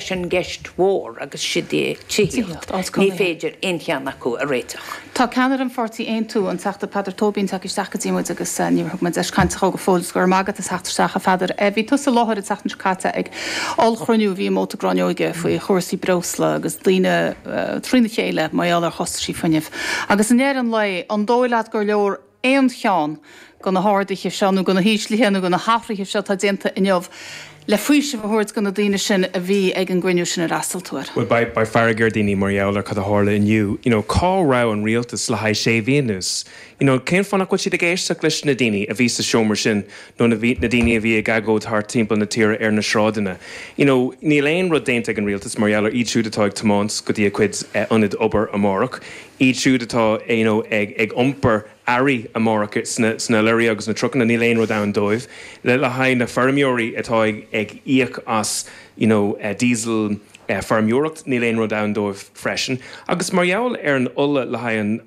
Sin ceist mhór agus sid é tithíocht. Ní féidir aon cheann acu a réiteach. Tá ceannaire an pháirtí Aontú, an Teachta Peadar Tóibín, tagtha isteach go dtí muid agus níor thug muid deis cainte dhó go fóill. Is go raibh maith agat as theacht isteach, a Pheadair. Bhí tusa i láthair an tseachtain seo caite ag ollchruinniú a bhí i Móta Gráinneoige faoi chúrsaí breosla agus daoine trína chéile mar gheall ar chostaisí fuinnimh. Agus i ndeireadh an lae, an dóigh leat gur leor aon cheann de na hardaithe seo nó de na híslithe nó de na hathraithe seo atá déanta inniu le faoiseamh a thabhairt do na daoine sin a bhí ag an gcruinniú sin ar fhreastail tú air? Bhuel, beidh fearg ar dhaoine mar gheall ar cad a tharla inniu, you know cá raibh an rialtas le haghaidh sé mhí anuas? you know cén fáth nach bhfuil siad ag éisteacht leis na daoine a bhí sa seomra sin nó na na daoine a bhí ag agóid thart timpeall na tíre ar na sráideanna? you know níl aon rud déanta ag an rialtas mar gheall ar iad siúd atá ag tiomáint go dtí a gcuid ionaid obair amárach. Iad siúd atá ag iompar earraí amárach sna leoraí agus na trucanna, níl aon rud ann dóibh. Le haghaidh na feirmeoirí atá ag íoc as diesel feirmeoireacht, níl aon rud ann dóibh freisin. Agus mar gheall ar an ola le haghaidh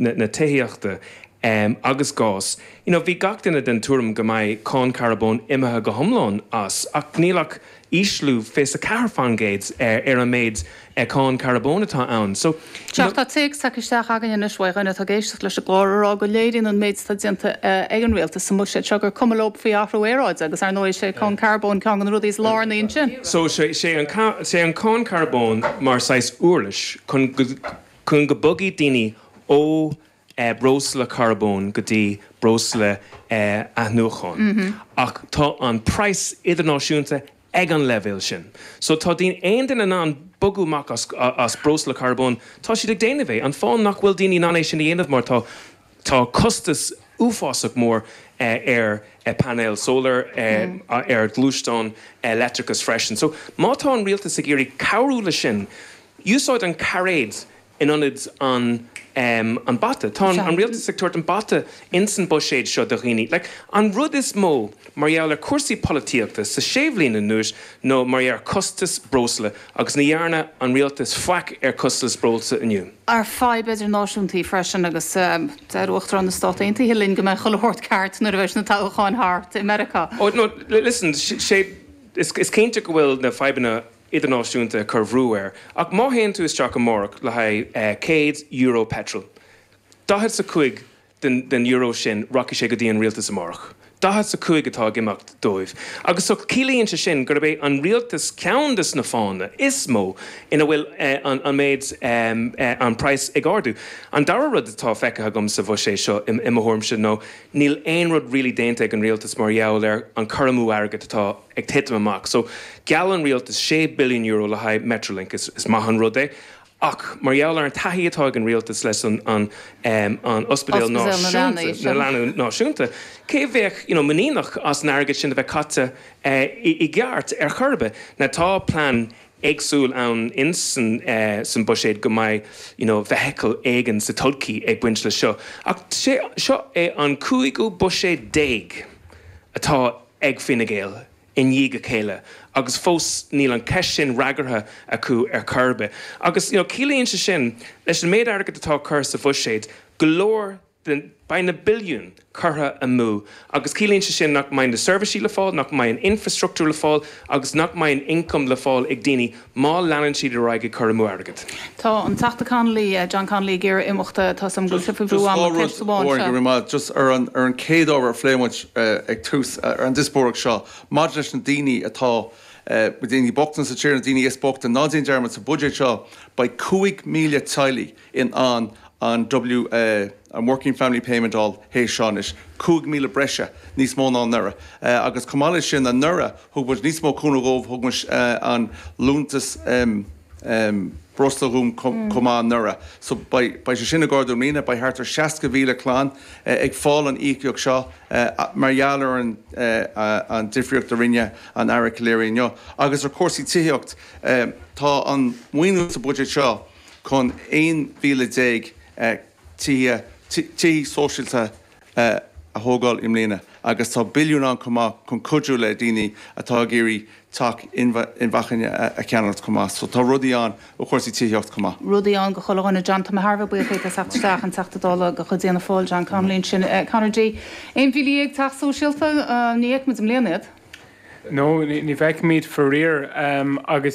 na tithíochta agus gás, bhí gach duine den tuairim go mbeidh cáin charbóin imithe go hiomlán as, ach níl ach ísliú 24% ar an méid cáin carbóin atá ann. So. Tá téacs tagtha isteach againn anois uaidh dhuine atá ag éisteacht leis an gclár a rá go léiríonn an méid atá déanta ag an rialtas sa mbuiséad seo gur cuma leo faoi athrú aeráide agus ar ndóigh is é cáin carbóin ceann de na rudaí is lárnaí ansin. So sé an cáin carbóin mar saghas uirlis chun go bogfaidh daoine ó breosla carbóin go dtí breosla athnuachana ach tá an praghas idirnáisiúnta ag an leibhéal sin. So tá daoine, aon duine in ann bogadh amach as as breosla carbóin, tá siad ag déanamh é. An fáth nach bhfuil daoine in ann é sin a dhéanamh mar tá tá costas uafásach mór ar phainéil solar, ar ghluaisteáin leictreachais freisin. So má tá an rialtas ag iarraidh cabhrú leis sin, úsáid an cairéad in ionad an an bata. Tá an rialtas ag tabhairt an bata ins an buiséad seo do dhaoine. Like, an rud is mó mar gheall ar cúrsaí polaitíochta sa sé bhliain anuas nó mar gheall ar costas breosla agus ní dhearna an rialtas faic ar costas breosla inniu. ar fadhb idirnáisiúnta í freisin agus deir Uachtarán na Stát Aontaithe linn go mbeidh chuile shórt ceart nuair a bheidh na toghacháin thart i Meiriceá. Oh, no, listen, is cinnte go bhfuil na fadhbanna idirnáisiúnta ag cur bhrú air, ach má théann tú isteach amárach le haghaidh céad euro peitril, daichead 's a cúig den euro sin rachaidh sé go dtí an rialtas amárach. Daichead 's a cúig atá ag imeacht dóibh. Agus so ciallaíonn sé sin gurb é an rialtas ceann de na fáthanna is mó ina bhfuil an méid, an praghas ag ardú. An dara rud atá feicthe agam sa bhuiséad seo, i mo thuairimse, nó níl aon rud really déanta ag an rialtas mar gheall ar an cur amú airgid atá ag titim amach. So, gheall an rialtas sé billiún euro le haghaidh Metrolink. Is maith an rud é, ach mar gheall ar an taithí atá ag an rialtas leis an an Ospidéal Náisiúnta na Leanaí Náisiúnta, cé a bheadh, you know, muiníneach as an airgead sin a bheith caite i gceart ar chor ar bith. Now, tá plean éagsúil ann in san san buiséad go mbeidh, you know, vehicle éigin sa todhchaí ag baint leis seo, ach sé seo é an cúigiú buiséad déag atá. ag Fine Gael i ndiaidh a chéile agus fós níl an cheist sin freagartha acu ar chor ar bith. Agus ciallaíonn sé sin, leis an méid airgid atá curtha sa bhuiséad, go leor de, beidh na billiúin curtha amú agus ciallaíonn sé sin nach mbeidh na seirbhísí le fáil, nach mbeidh an infrastruchtúr le fáil agus nach mbeidh an ioncam le fáil ag daoine má leanann siad ar aghaidh ag cur amú airgid. Tá an Teachta Connolly, John Connolly ag iarraidh imeacht. Tá fhios agam go bhfuil sibh faoi bhrú ama, ceist amháin anseo. Go raibh maith agat. Just ar an chéad ábhar a phléigh muid ag tús an diospóireacht seo, maidir leis na daoine atá, na daoine bochta sa tír, na daoine is bochta, ná déan dearmad sa bhuiséad seo beidh 5,000 teaghlaigh, in ann an WFP, an Working Family Payment a fháil, théis seo anois, 5,000 breise, níos mó ná anuraidh, agus chomh maith leis sin, anuraidh, thug muid níos mó cúnamh dhóibh, thug muid an liúntas breosla dhóibh chomh maith anuraidh. So, beidh sé sin ag ardú i mbliana, beidh thart ar 60,000 clann ag fáil an íocaíocht seo mar gheall ar an difríocht a rinne an tAire Calleary inniu. Agus ar chúrsaí tithíocht, tá an maoiniú sa bhuiséad seo, chun 11,000 tithe sóisialta a thógáil i mbliana agus tá billiún ann chomh maith chun cuidiú le daoine atá ag iarraidh teach inacmhainne a cheannacht chomh maith. So tá rudaí ann ó chúrsaí tithíocht chomh maith. rudaí ann do chuile dhuine. John, tá mé thar a bheith buíoch díot as theacht isteach, an Teachta Dála de chuid Fhianna Fáil, John Connolly ansin. Conor D, 11,000 teach sóisialta, ní fheicfimid i mbliana iad. No, ní feicfimid faraor agus.